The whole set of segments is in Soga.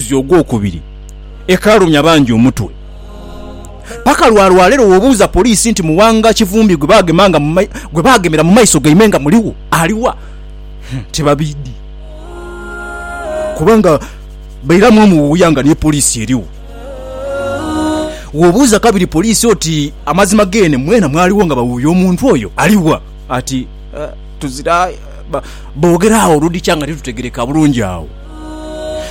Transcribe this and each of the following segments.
omwezi ogwokubiri ekalumya bangi omutwe paka lwa lwalero wobuuza poliisi nti Muwanga Kivumbi gwebagemera mu maiso gaimwe nga muligho aliwa? Tibabidhi kubanga bairamu omuwuya nga ni poliisi erigho. Wobuuza kabiri poliisi oti amazima geene mwena mwaligho nga bawuuya omuntu oyo aliwa? Ati tuzira boogera agho oludhikya nga titutegereka bulungi agho.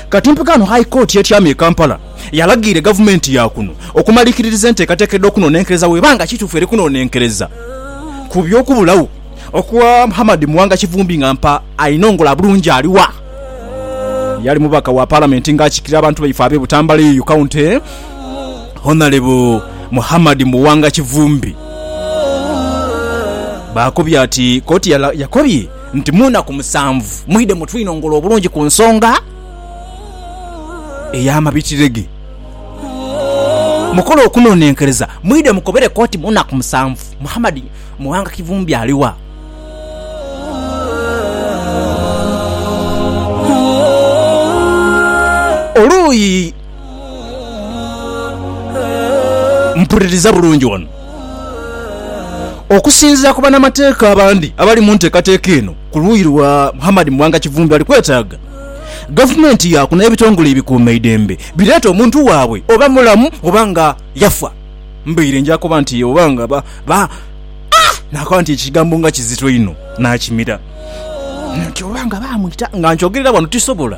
Kati mpaka ghano High Court y'etyama e Kampala yalagiire gavumenti ya kuno okumalikiririza enteekateeka edh'okunonenkereza bw'eba nga kituufu eri kunonenkereza ku by'okubulagho okwa Muhammad Muwanga Kivumbi nga mpa ainongola bulungi aliwa. Yali mubaka wa Palamenti nga akiikirira abantu baife ab'e Butambala eyo County, Honalebo Muhammad Muwanga Kivumbi. Bw'akobye ati, Kkooti yakobye. nti mu naku musanvu mwidhe mutwinongole obulungi ku nsonga ey'amabitire ge. Mukole okunonenkereza mwidhe mukobere koti mu naku musanvu Muhammad Muwanga Kivumbi ali wa? Oluuyi mpuliriza bulungi wano. Okusinzira ku banamateeka abandi abali mu nteekateeka eno ku luuyi lwa Muhammad Muwanga Kivumbi bali kwetaaga gavumenti yaaku n'ebitongole ebikuumaidembe bireete omuntu waabwe oba mulamu oba nga yafa mbaire nja kuba nti oba nga ba nakoba nti ekigambo nga kizito inho nakimira nti oba nga bamwita nga nkyogerera wano tisobola